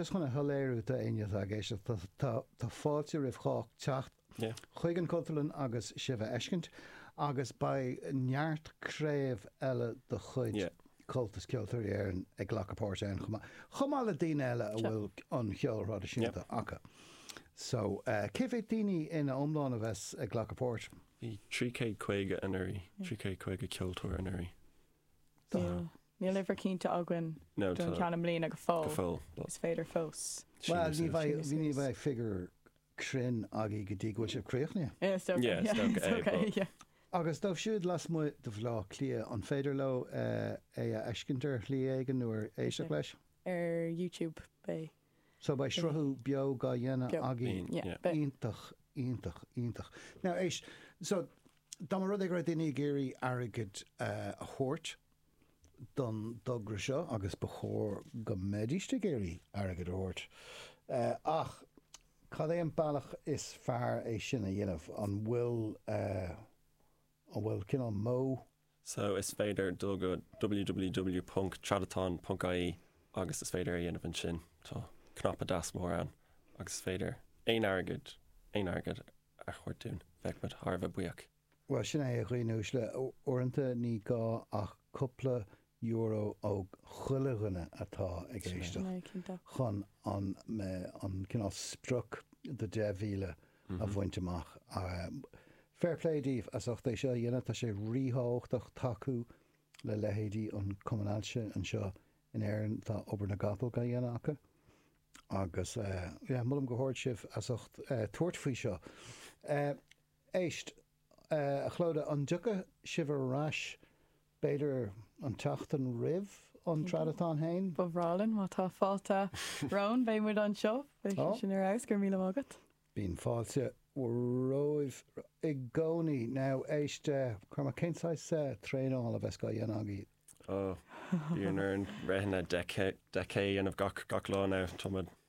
Is chun é a shoiléiriú d'éinne atá ag éisteacht, tá fáilte roimh chách teacht chuig an Chultúrlann agus sibh a fheiscint agus beidh neart craobh eile de chuid Chomhaltas Ceoltóirí Éireann ag glacadh páirte ann chomh maith, chomh maith le daoine eile a bhfuil an ceol traidisiúnta acu. So, cé mhéad daoine ina iomlán a bheas ag glacadh páirt? Bhí trí chéad caoga anuraidh, trí chéad caoga ceoltóir anuraidh. Níl, níl uimhir cinnte againn don cheann i mbliana go fóill. Go fóill. Is féidir fós. Well, ní bheidh, ní bheidh figure cruinn againn go dtí go bhfuil sé críochnaithe. Yeah, is dócha. Yeah, is dócha, yeah, yeah, yeah. Agus dóibh siúd lasmuigh de Bhleá Cliath, an féidir leo é a fheiscint ar shlí éigin nó éisteacht leis? Ar YouTube, beidh. So beidh sruthú beo gá dhéanamh againn. Iontach, iontach, iontach. Now, éist, so dá mba rud é go raibh daoine ag iarraidh airgead a thabhairt don dtogra seo, agus ba chóir go mbeidís ag iarraidh airgead a thabhairt, ach cad é an bealach is fearr é sin a dhéanamh? An bhfuil, an bhfuil cineál modh? so is féidir dul go www ponc tradatán ponc ie agus is féidir é a dhéanamh ansin. Tá cnaipe deas mór ann agus is féidir aon airgead, aon airgead a thabhairt dúinn. Bheadh muid thar a bheith buíoch. Bhuel, sin é, a dhaoine uaisle. Uaireanta ní gá ach cúpla euro ó chuile dhuine atá ag éisteach chun an cineál sprioc de 10,000 a bhaint amach. Fair play daoibh as ucht é seo a dhéanamh, tá sé rí-thábhachtach tacú le leithéidí an Cumann Ailse anseo in Éirinn, tá obair na gcapall á dhéanamh acu agus yeah, molaim go hard sibh as ucht tabhairt faoi seo. Éist, a Chlodagh, an dtiocfaidh sibh ar ais b'fhéidir an tseachtain roimh an Tradatán féin. Ba bhreá linn má tá fáilte romhainn, beidh muid anseo, beidh sé sin ar fheabhas, go raibh míle maith agat. Bíonn fáilte romhaibh i gcónaí. Now, éist, Cormac, cén saghas traenála a bheas gá dhéanamh agaibh? Oh, bíonn orainn rith 10k a dhéanamh gach lá now, tá muid.